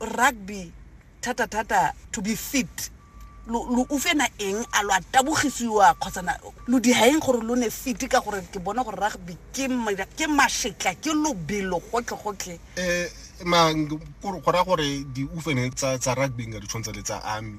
rugby thata thata to be fit lo lo ufena eng a lo a tabogisiwa kgotsa na lo dihaeng gore lo ne fiti ka gore ke bona gore rugby ke ma- ke mašetla ke lobelo gotlhegotlhe um ma go raya gore diufene tsa tsa rugby nka di tshwantsha le tsa army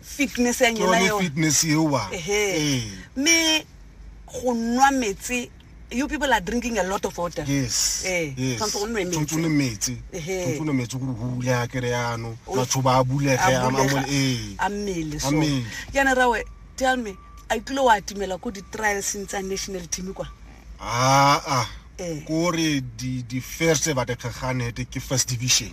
fitness ya nyela eo fitness eo wa eh me go nwa metsi you people are drinking a lot of water yes eh tsontse go nwe metsi tsontse metsi tsontse nwe metsi go hule a kere yano batho ba bule ge a mo eh a mmele so yana rawe tell me a tlilo wa timela ko di trials ntsa national team kwa ah ah eh. kore di di first ba de khagane ke first division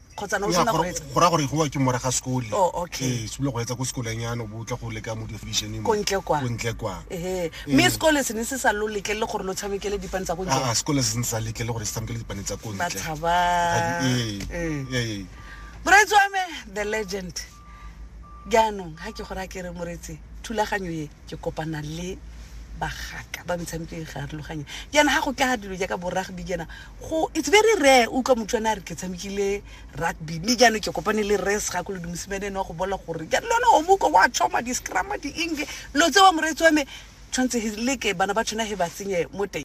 kgotsa ne o sena go etsa go ra gore go ke mora ga sekole oh okay se go etsa go sekoleng yana bo tla go le ka mo division mo kontle kwa kontle kwa eh me sekole se ne se sa lo letle le gore lo tshamekele dipane tsa kontle ah sekole se ne sa letle le gore se tshamekele dipane tsa kontle ba thaba eh eh Braitswame the legend jaanong ga ke gore a kere moretse thulaganyo e ke kopana le bagaka ba metshameko e garologanye jaana ga go tla dilo jaaka bo rugby jaana go it's very rare utlwa motho ane a re ke tshamekile rugby mme jaanong ke kopane le res ga ko le dumosimane ene wa go bola gore ja lone omuko wa choma di-scrama di-eng lo tse wa moreetsi wa me tshwanetse he leke bana ba tshwana he ba senye mo teng